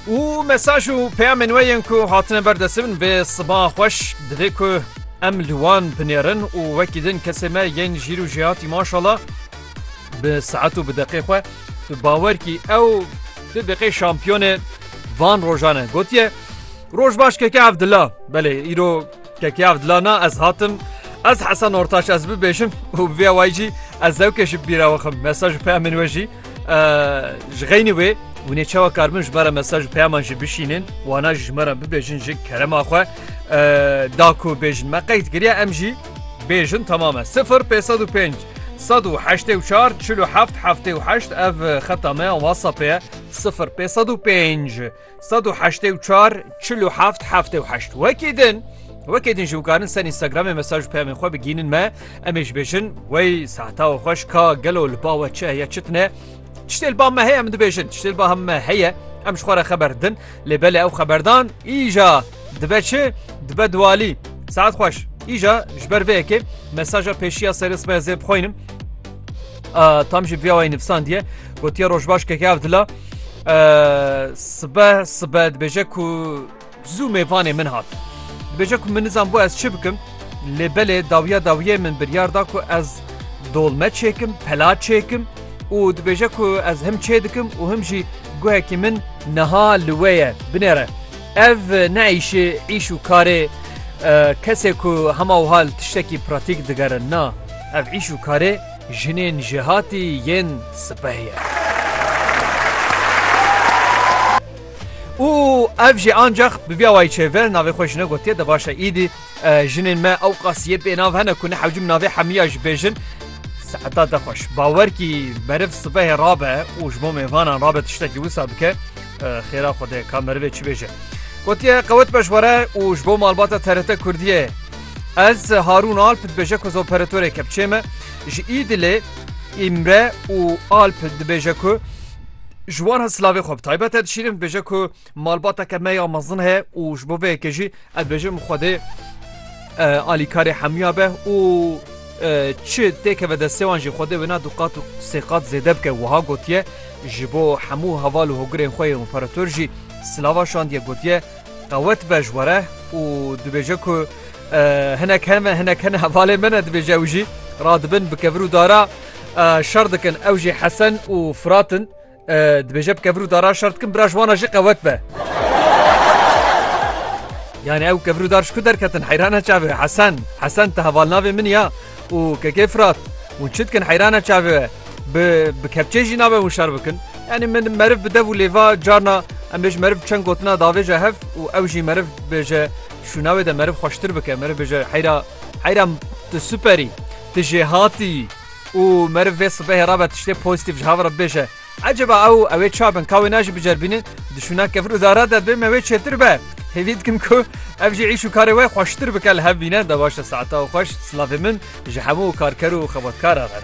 û mesaj û peyamên we yên ku hatine ber destê min vê siba xweş divê ku em li wan binêrin û wekî din kesê me yên jîr û jêhatî maşala bi saet û bi deqê xwe tu bawer kî ew tu deqê şampiyonê van rojan e gotiye Roj baş keke Evdilla belê îro Kekê ev dila na ez hatim Ez Hesen Ortaç ez bibêjim û bi vê awayî jî ez zewkê ji bîra wixim mesaj û peyamên we jî ji xeynî wê hûn ê çawa karbin ji me re mesaj û peyaman jî bişînin wana jî ji me re bibêjin ji kerema xwe da ku bêjin me qeyt kiriye em jî bêjin temame 0 505 1984 47 78 ev xeta me WhatsApp ye 0 505 Sed û heştê û çar çil û heft heftê û heşt wekî din wekî din ji wikarin ser Instagramê mesaj peyamên xwe bigînin me em ê ji bêjin wey sehta û xweş ka gelo li ba we çi heye çitine tiştê li ba me heye em dibêjin tiştê li ba hem me heye em ji xwe re xeber din lê belê ew xeberdan îja dibe çi dibe diwalî saet xweş îja ji ber vê yekê mesaja pêşiya serê sibê zê bixwînim Tam jî viyawayî nivsandiye gotiye rojbaş keke ev dila sibe sibe dibêje ku zû mêvanê min hat. Dibêje ku min nizan bû ez çi bikim lê belê dawiya dawiyê min biryar da ku ez dolme çêkim pela çêkim û dibêje ku ez him çê dikim û him jî guhekî min niha li wê ye binêre. Ev ne îşê îş û karê kesê ku hema wiha li tiştekî pratîk digerin na. Ev îş û karê jinên jêhatî yên sipeh ye. Û ev jî ancax bi vîa wayî çêve navê xwe ji ne gotiye de baş e îdî. Jinên me ew qasiyê bênav hene ku ne hewcim navê hemiya ji bêjin. Seheta te xweş. Bawer kî meriv sibehê rabe û ji bo mêvanan rabe tiştekî wisa bike xêra xwedê ka merivê çi bêje. Gotiye qewet beş were û ji bo malbata TRT Kurdiyê. Ez Harûn Alp dibêje ku zoperatörê kepçê me ji Îdilê Îmre û Alp dibêje ku ji wan ha silavê xwe bi taybet e dişîrim dibêje ku Malbateke me ya mezin heye û ji bo vê yekê jî ez dibêjim Xwedê alîkarê hemûya be û çi têkeve destê wan jî Xwedê wêna du qat û sê qat zêde bike wiha gotiye ji bo hemû heval û hogirên xwe yên operator jî silava şandiye gotiye qewet be ji were û dibêje ku hinek heme hinek hene hevalê min e dibêje ew jî radibin bikevir û dara şer dikin ew jî hesen û firatin Dibêje bi kevir û daran şer dikim bira ji wan re jî qewet be. Yani ew kevir û dar ji ku derketin heyrana çavê we Hesen. Hesen te hevalnavê min ya û kekê Firat. Hûn çi dikin heyrana çavê we bi bi kepçê jî nabe hûn şer bikin. Yani min meriv bi dev û lêva carna em bêj meriv çend gotina davêje hev û ew jî meriv bêje şûna wê de meriv xweştir bike meriv bêje heyra heyra tu superî tu jêhatî. Û meriv vê sibehê re be tiştê pozîtîf ji hev re bibêje. Eceba ew ew ê çawa bin ka wê najî biceribîne? Di şûna kefir û dara de bê me wê çêtir be. Hêvî dikim ku ev jî îş û karê we xweştir bike li hev bîne. Da baş e saeta û xweş. Silavê min ji hemû karker û xebatkaran re.